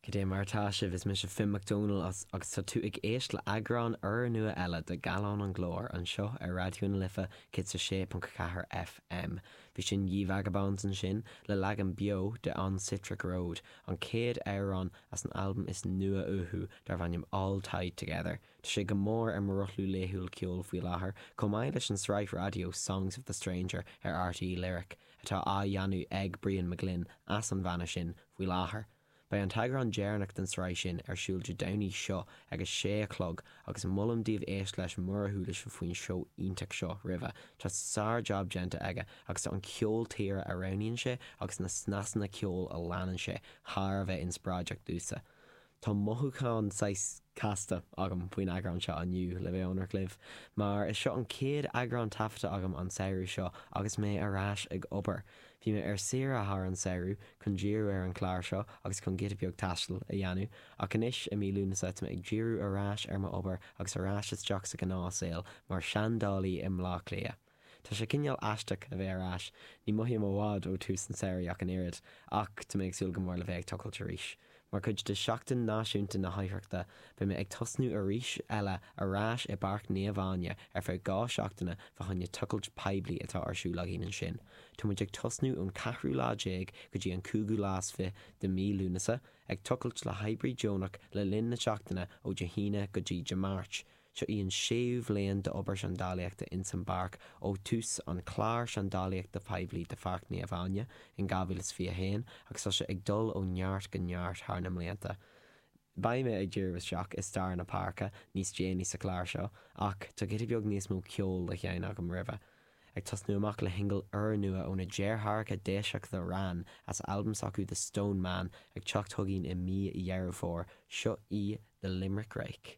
Cad é mar atá sibh? Is mise Finn MacDónaill agus tá tú ag éist le eagrán úrnua eile de Gallán an Glóir anseo ar Raidió na Life 106.4 FM. Bhí sin Ye Vagabonds ansin le leagan beo de On Sitric Road, an chéad amhrán as an albam is nua uathu darbh ainm All Tied Together. Tá sé go mór ar mo rothlú laethúil ceoil faoi láthair, chomh maith leis an tsraith raidió Songs of the Stranger ar RTÉ Lyric. atá á dhéanamh ag Brían Mac Gloinn as an bhanna sin faoi láthair. Beidh an t-eagrán deireanach den tsraith sin ar siúl Dé Domhnaigh seo ag a sé a chlog agus molaim daoibh éist leis mura chuala sibh faoin seó iontach seo roimhe. Tá sár-jab déanta aige agus tá an ceol tíre a roghnaíonn sé agus na snáthanna ceoil a leanann sé thar a bheith inspioráideach domhsa. Tá mothúchán saghas casta agam faoin eagrán seo inniu, le bheith ionraic libh, mar is seo an chéad eagrán taifeadta agam an samhradh seo agus mé ar ais ag obair. Bhí mé ar saoire thar an samhradh chun díriú ar an chlár seo agus chun giota beag taistil a dhéanamh, ach anois i mí Lúnasa tá mé ag díriú ar ais ar m'obair agus ar ais isteach sa ghnáth saol mar seandálaí i mBleá Cliath. Tá sé cineál aisteach a bheith ar ais, ní mothaím i bhfad ó tús an tsamhraidh ach an oiread, ach tá mé ag súil go mór le bheith ag tochailt arís. Mar chuid de Sheachtain Náisiúnta na hOidhreachta, beidh mé ag tosnú arís eile ar ais i bPáirc Naomh Áine ar feadh dhá seachtaine fá choinne tochailt poiblí atá ar siúl againn ansin. Tá muid ag tosnú ón ceathrú lá déag go dtí an cúigiú lá is fiche de mí Lúnasa, ag tochailt le hoibrí deonach le linn na seachtaine ó Dé hAoine go dtí Dé Máirt. Seo í an séú bhliain d'obair seandálaíochta ins an bpáirc ó tús an clár seandálaíochta poiblí do Pháirc Naomh Áine in 2021 agus tá sé ag dul ó neart go neart thar na mblianta. Beidh mé ag díriú isteach i stair na páirce níos déanaí sa chlár seo ach tá giota beag níos mó ceoil le seinn agam roimhe. Ag tosnú amach le shingil úrnua ó na deartháireacha Déiseach The Wran as albam s'acu The Stone Man ag teacht chugainn i mí Dheireadh Fómhair, seo í The Limerick Rake.